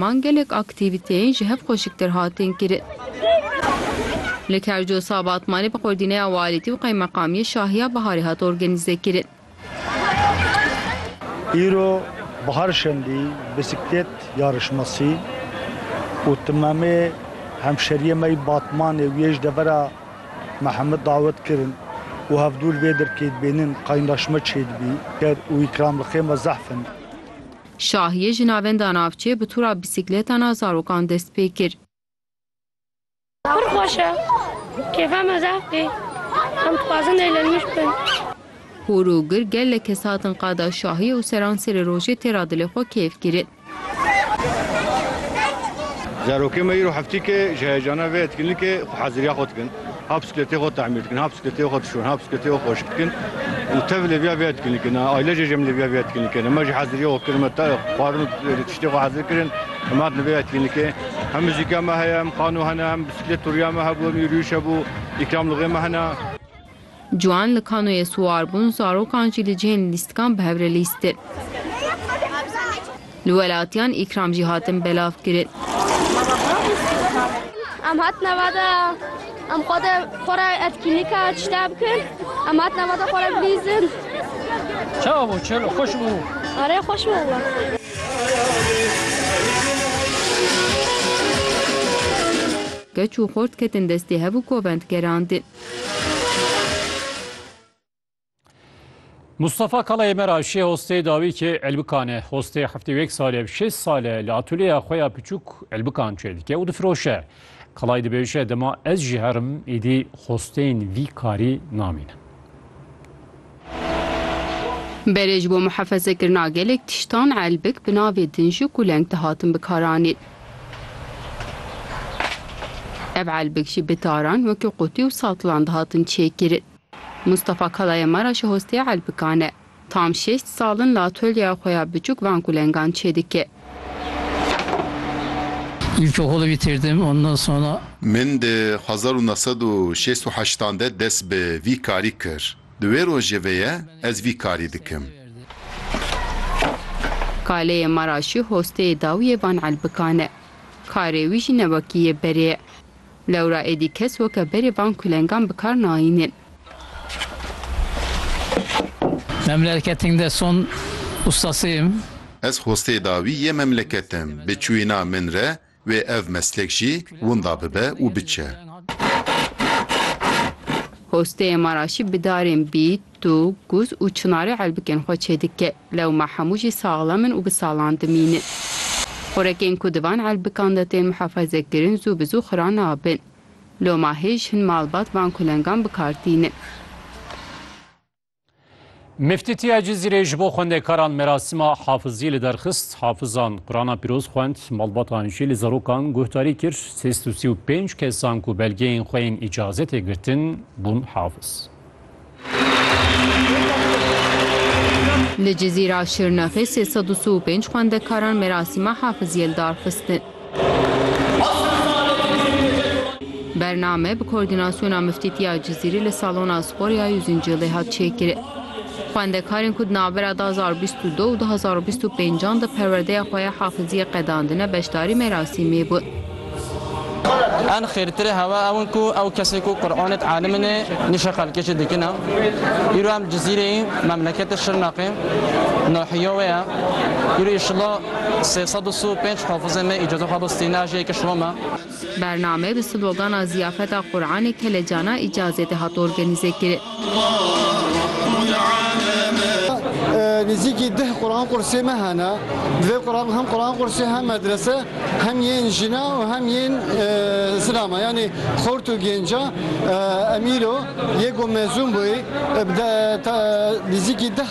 Man gelek aktîvîteyên ji hev xweşiktir hatin kirin. Li Kerco Sabat Malê bi qurdîneya walîtî û qeymeqamiyê Şahiya Biharê hat organîzekirin. Îro Bihar Şendî Bisiklêt Yarışmasî û Timamê Hemşeriyê me yê Batmanê û yê ji devera me heme dawet kirin û hevdûr vê dirkê dibênin, qaynaşme çêdibî û îkramlixê me zehf in. Şahiyê ji navenda navçê bi tûra bîsîkletan a zarokan dest pê kir. Pir xweş e. Kêfa me zaf tê. Em dixwazin lê li nûş bin. Hûr û gir gelek kes hatin qada şahiyê û seran serê rojê tê ra dilê xwe kêf kirin. Zarokên me îro heftîk e ji heyecana vê etkinlikê xweheziriya xwe dikin. Ha bisikletê xwe temîr dikin, ha bisikletê xwe dişon, ha bisikletê xwe xweşik dikin û tev lê viya viya dikin li kene. Aile jê jî min lê viya viya dikin li kene. Me jî hezirîya xwe kirin, me xwarin û tiştê xwe hezir kirin. Em hatin li vê ya dikin li kê. Hem muzîka me heye, hem xano hene, hem bisiklet turiya me hebû, hem yûriyûş hebû, îkramlixê me hene. Ciwan li kanoyê siwar bûn, zarokan jî li cihên lîstikan bi hev re lîstin. Li welatiyan îkram jî hatin belavkirin. Em hatine va de em xwe de xwe re etkînîka çita bikin. Em hatine va de xwe re bilîzin. Çawa bû? Çelo xweş bû? Arê xweş bû wala. Keç û xort ketin destê hev û kovend gerandin. Mustafa Kalayê me ra şê hostê dawî ki elbikan e. Hostê heftê û yek sal e, şêst sal e li atolyeya xwe ya piçûk elbikan çêdike û difiroşe. Kalay dibêje, dema ez jî herim, îdî hosteyên vî karî namînin. Berê ji bo muhefezekirina gelek tiştan elbik bi navê dinjik û leng dihatin bikaranîn. Ev elbik jî bi taran wekî qutî û satilan dihatin çêkirin. Mustafa Kalaya Maraş e hostê elbikan e. Tam şeş sal in li atölyeya xwe ya biçûk van ku lengan çêdike. İlkokulu bitirdim, ondan sonra Min di hezar û neh sed û şêst û heştan de dest bi vî karî kir. Di wê rojê ve ye ez vî karî dikim. Kaleyê Maraşî hosteyê dawiyê van Elbikan e. Karê wî jî ne wekî yê berê ye. Lewra êdî kes weke berê van kulengan bi kar nayînin. Memlelketing de son ustasiyim. Ez hosteyê dawî yê memleketim. Bi çûyîna min re Wê ev meslek jî winda bibe û biçe. Hosteyê ma ra jî bi darên bît, tûk, guz û çinarê elbikên xwe çêdike. Lewma hemû jî saxlem in û bi salan dimînin. Xurekên ku di van elbikan de tên mihafezekirin zû bi zû xira nabin. Loma hêj hin malbat van kulengan bi kar tînin. Miftîtiya Cizîrê ji bo xwendekaran merasîma hafizî li derxist, hafizan Qurana pîroz xwend, malbatan jî li zarokan guhdarî kir, sêst û sî û pênc kesan ku belgeyên xwe yên îcazetê girtin bûn hafiz. Li Cizîra Şirnexê sê sed û si û pênc xwendekaran merasîma hafiziyê li dar xistin. Bername bi koordînasyona Miftîtiya Cizîrê li Salona Sporya Yûzincîlê hat çêkirin. Xwendekarên ku di navbera du hezar û bîst û du û du hezar û bîst û pênc an di perwerdeya xwe ya hafiziyê qedandine beşdarî merasîmê bûn. En xêrtirê hewa ew in ku ew kesên ku Quranê di elimine nîşe xelkê jî dikin e. Îro em li Cizîrê yîn, memleketê Şirnexê, nahîya wê ye. Îro îşillah. Sê sed û si û pênc hafizê me îcaza xwe bi stînajiyê kir şiro me. Bername bi slogana Ziyafeta Quranê Kelecana Îcazê de hat organîze kirin. Nêzîkî deh Quranqursê me hene. Di vê Quran hem Quranqursê hem medrese hem yên jina û hem yên zina me yanî xort û gênca Emîro yê ku mezûn bûyî bi nêzîkî deh